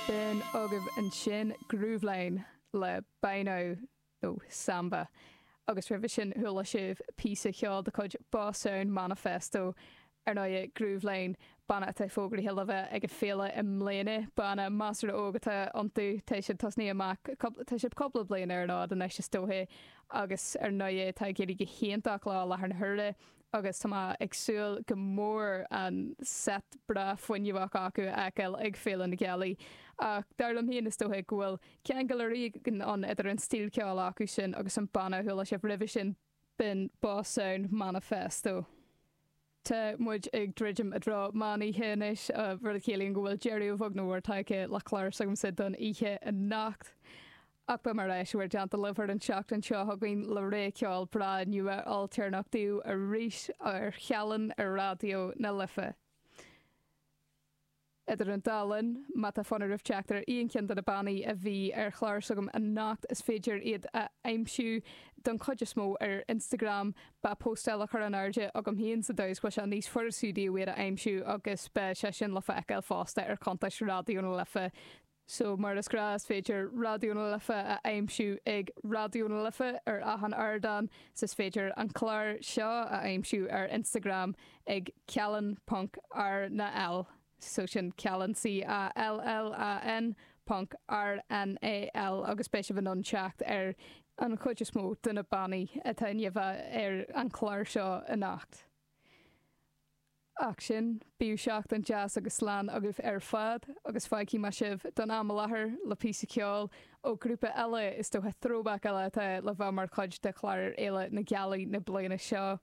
B'in agaibh ansin Grooveline le Bainne ó Samba, agus roimhe sin chuala sibh píosa ceoil de chuid Boss Sound Manifesto, ar ndóighe, Grooveline, banna atá fógraithe le bheith ag an bhféile i mbliana, banna measartha óg atá iontu, tá siad tosaithe amach, tá siad cúpla bliain ar an fhód anois is dóiche, agus ar ndóighe tá ag éirí go hiontach leo i láthair na huaire, agus tá mé ag súil go mór an seit breá fuinneamhach acu a fheiceáil ag Féile na Gealaí, ach dar liom féin is dócha go bhfuil ceangal éigin ann idir an stíl ceoil acu sin agus an banna a chuala sibh roimhe sin, b'in Boss Sound Manifesto. Tá muid ag druidim i dtreo meán oíche anois, rud a chiallaíonn go bhfuil deireadh a bheag nó a mhór tagtha le clár s'agamsa don oíche anocht. Ach beidh mé ar ais bomaite Déardaoin libh ar an tseachtain seo chugainn le rogha ceoil breá nua ailtéarnach daoibh arís ar Cheallan ar Raidió na Life. Idir an dá linn, má tá fonn oraibh teacht ar aon cheann de na bannaí a bhí ar chlár s'agam anocht is féidir iad a aimsiú don chuid is mó ar Instagram. Beidh póstáil á chur in airde agam féin sa dóigh is go bhfuil sé níos fuirisí daoibh iad a aimsiú agus beidh sé sin le feiceáil fosta ar chuntais Raidió na Life. So, mar is gnáth, is féidir Raidió na Life a aimsiú ag Raidió na Life ar achan ardán, 's is féidir an clár seo a aimsiú ar Instagram ag ceallan.rnall, so sin Ceallan C-a-l-l-a-n ponc r-n-a-l-l agus beidh sibh in ann teacht ar an chuid is mó de na bannaí atá ainmnithe ar an chlár seo anocht. Ach go dtí sin, bíodh seachtain deas agus lán agaibh ar fad, agus fágfaidh mé sibh, don am i láthair, le píosa ceoil ó grúpa eile, is dócha throwback eile atá le bheith mar chuid de chlár Fhéile na Gealaí na bliana seo.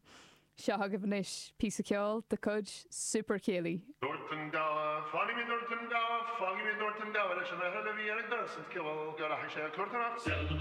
Seo agaibh anois píosa ceoil de chuid Super Céilí. Dúirt an gabha, Fágfaidh mé Dúirt an gabha, Fágfaidh mé Dúirt an gabha leis an fhear eile a bhí ar an doras an t-cibeal go rachaidh sé ag cúrtáil amach.